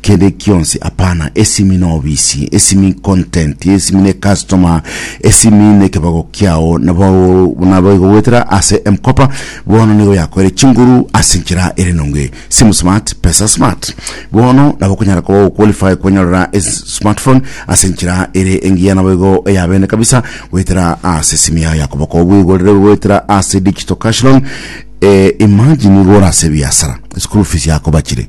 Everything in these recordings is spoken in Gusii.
Kende kionsi apana, esimi na obisi, esimi content, esimi ne customer, esimi ne kebago kiao, nabo nabo igogwetera ase emkopa bono nigo yakoire chinguru ase enchera ere nonge. Simu smart, pesa smart. Bono nabo okonyara koba oqualify kwanyorera smartphone ase enchera ere engiya nabo igo eya bene kabisa goetera ase esimi yao ya koboko obweigorere goetera ase digital cash loan. Eh, imagine igo orase ebiasara, school fees yako bachire.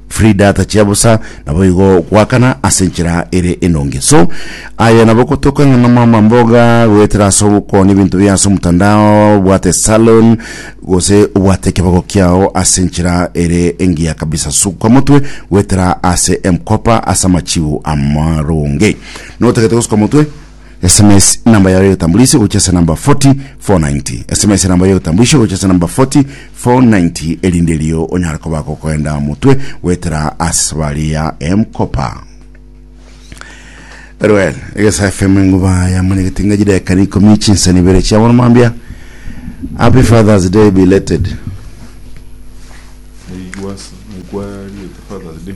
Frida atachia bosa naboigo gwakana ase enchera ere enonge so aye nabo kotoka ng'a nomama mboga goetera ase ogokoni ebinto bia ase omotandao obwate salon gose obwate ekebago kiao ase enchera ere engiya kabisa suka motwe goetera ase emkopa ase amachigo amaronge notagete gosuka motwe SMS enamba yao y'ogotambulisho gochia ase namba 40490. SMS enamba y'ogotambulisho gochia ase namba 40490 erinde erio onyare koba gokoenda motwe goetera ase esabari ya M-Kopa. Eruel egesa FM enguba yamanyegete ng'a chideka na ikomi chinsani ibere chia bono mambia. Happy Father's Day belated. Naigwa naigwa riete Father's Day.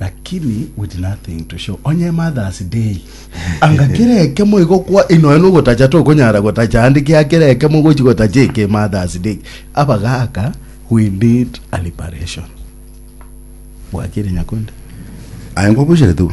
Lakini with nothing to show onye Mother's Day anga kera ekemo igo kwa inoe nogotacha tokonyara gotacha ande kia kera ekemo gochi gotacha eke Mother's Day abagaka we need a liberation bwakire nyakonde Aye ngobuchere tu.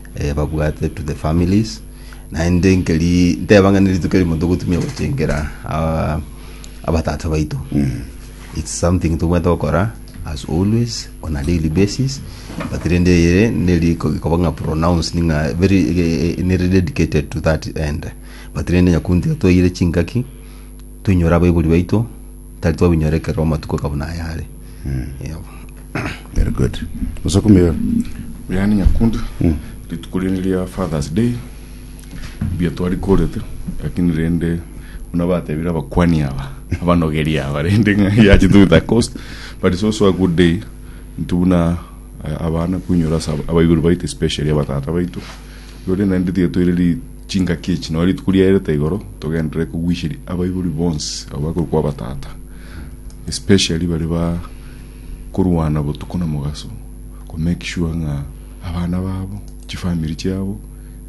eh, babwate to the families naende nkeri nteba ng'a nerituko erimo togotumia gochengera ah, abatata baito its something tobwate gokora as always on a daily basis but rende ere neri koba ng'a pronounced ng'a very eh, eh, neri dedicated to that end but rende nyakunti toire chingaki Toinyore abaibori baito, tari twabinyora ekerero amatuko aka buna aya are. Yebo. Very good. Musoku Mioyo. Buya ni Nyakundi. Rituko riane ria Father's Day. Mbuya twarikorete. Lakini rende buna batebire abakwani aba, abanogeri aba rende ng'a ya to the coast. But it's also a good day into buna eh, abana kuinyora ase ab- abaibori baito especially abatata baito. Rore naende tiga toire ri Chingaki echi noo rituko riaerete igoro togenderere kogwisheria abaibori bonsi abo bakorwa kwa abatata especially baria ba korwana botuko na mogaso ko make sure ng'a abana babo chifamiri chiabo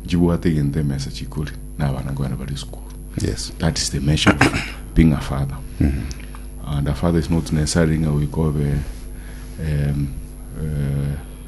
nchibwate egento emesa chikore na abana nkoene bare esukuru Yes. that is the measure of being a father and a father is not necessarily ng'a goika obe um, eh,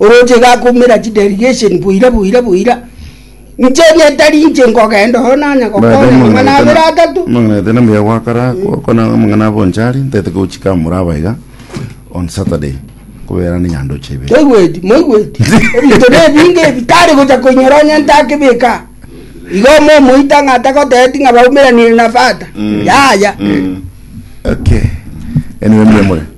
Oroche iga akoumera chidelegation boira boira boira, inche egetari inche nkogenda oo nanya gokonya amang'ana abere atato. Mang'anete na mbuya gwakora gokona amang'ana abo nchari ntete gochika amura aba iga on Saturday kobera ne nyandoche ibere. Toigweti, moigweti? Ebinto nebinge ebi tari gocha koinyora onye ntakebeka aa. Igo omo omoito ng'a atagotebeti ng'a baumeranire na fata, yaya. Okay. Anyway mbuya more.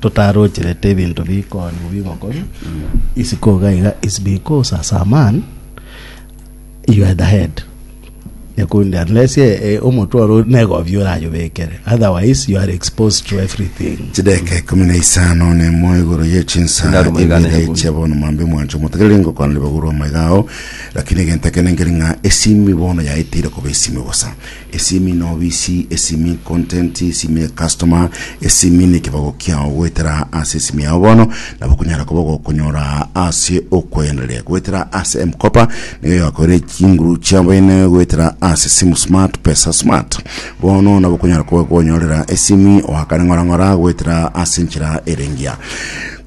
totarocherete ebinto bikoni bigokori isiko iga iga is because as a man you are the head nyakundi unless eh, eh, omotwe oro negobi orayobekere otherwise you are exposed to everything chideka ikumi na isano na emo igoro ye chinsa Narumo igana ibere igumi. chia bono mwambe mwancho motegerere ngokwana libaguru amaiga ao lakini egento ekenengeri ng'a esimi bono yaetire koba esimi bosa Esimi n'obisi, esimi content, esimi ne customer, esimi nekebago kiao goetera ase esimi yao bono nabo okonyara koba ogokonyora ase okoendereria goetera ase M-Kopa nigo egakoera chinguru chia baine goetera ase simu smart pesa smart bono nabo okonyara koba okonyorera esimi oakane ng'ora ng'ora goetera ase enchera ere engiya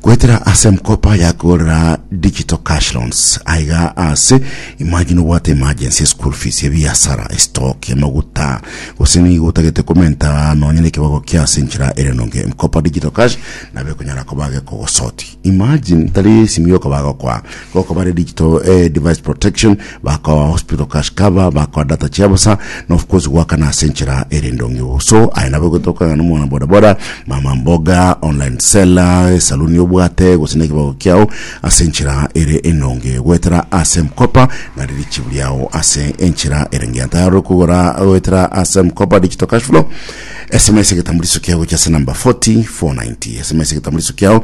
Goetera ase M-Kopa yakorera Digital Cash Loans aiga ase Imagine obwate emergency, eschool fees, ebiasara, estock, amaguta, gose nigo otagete komenta nonya nekebago kia ase enchera ere enonge. M-Kopa Digital Cash nabo ekonyara koba gekogosotia. Imagine tari esimi yokoba gokoa Gokwa bare digital eh, device protection, bakoa hospital cash cover, bakoa data chia bosa, na of course goakana ase enchera ere endong'u. So aye nabo egotoka ng'a nomwana boda boda, mama mboga, online seller, esaluni obwate, gose na ekebago kiao ase enchera ere enonge goetera ase M-Kopa na ririchibu riao ase enchera ere engiya. Tayari okogora goetera ase M-Kopa digital cash flow. SMS egetambuliso kiao gochia ase number 40490. SMS egetambuliso kiao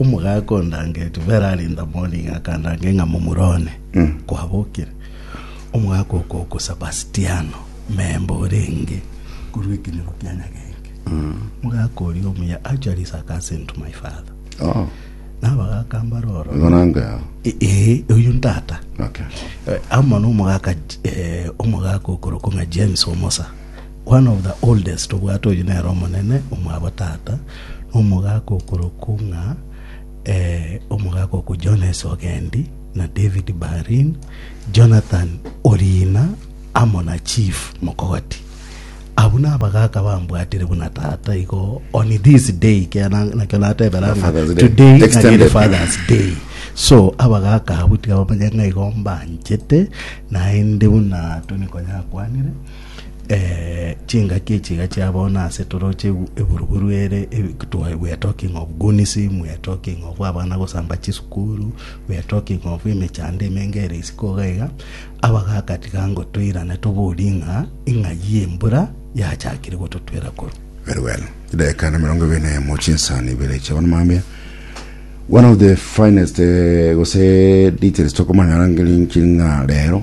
Omogaaka o Ndangeti Ferrari Ndamoniga akandange ng'a momura one kwabokire, omogaaka o Koko Sebastiano memba orenge korwa ekenyoro kia Nyagenki. Omogaaka oria omuya achwa risaaka ase into my father. Oh, Na abagaaka mbare oro. igo nango yao. E- Ee, oyu ntata. Okay. Eh, amo nomogaaka J- eh, omogaaka okorokwa ng'a james omosa One of the oldest obwate oyio nere omonene omwabo tata nomogaka okorokwo ng'a eh, omogaka okwo Jones Ogendi na David Barin Jonathan Orina amo na Chief Mokogoti abwo nabagaka bambwatire buna tata igo on this day kera na- nakio natebera ng'a Father's Day. today nagere Extended. Father's Day so abagaka abwo tiga bamanye ng'a igo mbanchete naende buna Tony Konya akwanire Ee, chingaki echi iga chia bono ase toroche egu- eburuburu ere, ebe- twa- we are talking of gunisim, we are talking of abana gosamba chisukuru, we are talking of emechando emenge ere isiko iga iga, abagaka tiga ngo toirane toborie ng'a ing'ai embura yachakire gototwera korwa. Very well. Dakika na mirongo ibere na emo chinsani ibere chia bono mambia. One of the finest eh, gose details tokomanya ngeri nki ng'a rero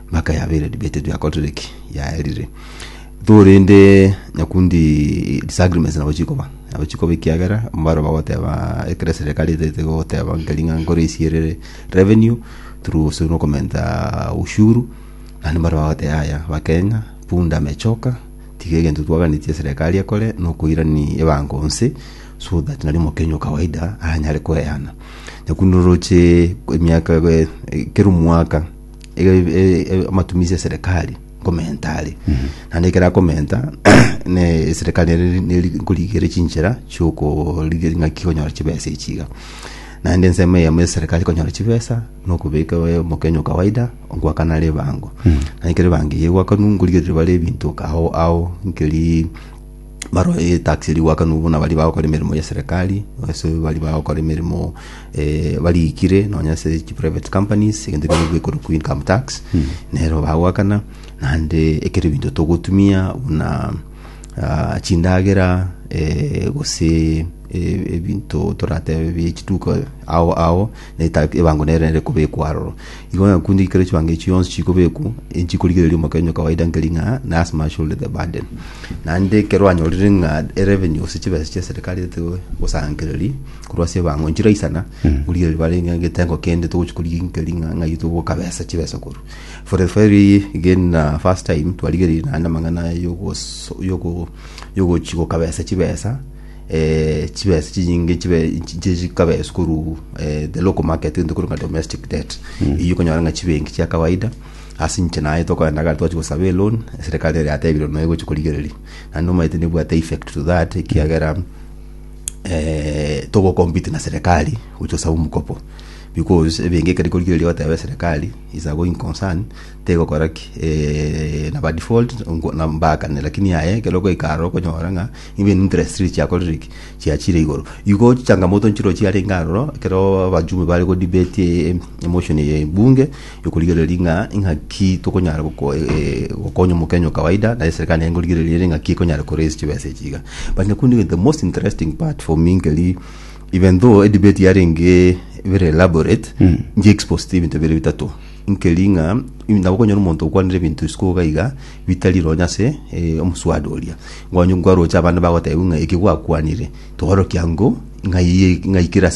Maka yabeire debate jwa korire ki yaerire Igo rende nyakundi disagreements nabo chikoba nabo chikoba ekiagera mbaro bagoteba ekere serikali etete goteba nkeri ng'a nkore esierere revenue through ase nokomenta ushuru naende mbaro bagoteba yaya bakenya punda amechoka tiga egento twaganetie serikali ekore nokoirani ebango onsi so that nari omokenya o kawaida anyare koeana nyakundi oroche emiaka ekero omwaka e- e- e- amatumisi ya serikali nkomenta are naende ekero akomenta ne serikali ere neri nkorigere chinchera chiokorigia ng'aki konyora chibesa echi iga naende ensemo eyemo ya serikali konyora chibesa nokobeka eh, omokenya o kawaida ngoakana ribango naende ekero ribango eye egoakanwa nkorigereria bare ebinto kaao ao nkeri baroe etax eri gwakanwa buna bari bagokora emeremo ya serikali ase bari bagokora emeremo eh, barikire nonya ase chi private companies egento kero gekorwa ku income tax nero bagwakana naende ekero ebinto togotumia buna ah, chindagera eh, gose eh, ebinto toratebe bie chiduka ao ao na etareti y'ebango nere nere ekobekwa aroro. Igo ng'a kunde ekero chibango echio chionsi chikobekwa, nchikorigereria omokenyo o kawaida nkeri ng'a nurse must shoulder the burden. Naende ekero anyorire ng'a erevenue gose chibesa chia serikali ete gosangereria korwa ase ebango nchiraisana, origereria bare ng'a egetengo kende togochikorigia nkeri ng'a ng'ai togoka besa chibesa korwa. For the very again na first time twarigereiri naende amang'ana yogoso yogo yogochi goka besa chibesa, eh, chibesa chinyinge chibe chi- chi- chikabeswa koru eh, the local market gento koru ng'a domestic debt eyio okonyora ng'a chibenki chia kawaida ase inche naye tokoenda gari twachi gosaba eloni eserekari ere yatebire noe gochi korigereria naende omanyete nebwate effect to that ekiagera eh, togocompete na serekari gocha gosaba omokopo because ebenki ekeri korigereria goteba eserekari is a going concern tegokora ki eh, naba default nko- na- mbaakane lakini aye ekero ogoika aroro okonyora ng'a Even interests chiakorire ki? Chiachire igoro. Igo chichangamoto nchiro chiarenge aroro ekero abajumbe bare go debate e- e- emotion eye bunge yokorigereria ng'a ing'aki tokonyara goko- e- e- gokonya omokenya o kawaida naye serikali naye nkorigereria ere ng'aki ekonyara ko raise chibesa echi iga. But nakondi egento the most interesting part for me nkeri even though edebate yarenge very elaborate nchi exposed ebinto bire bitato. Nkeri ng'a nabokonyora omonto okwanire ebinto isiko iga iga bitari iro onye ase omosubati oria, nkonye nkwaroche abande bagotebiwa ng'a eki gwakwanire, torokia nko ng'ai ng'ai kere ase.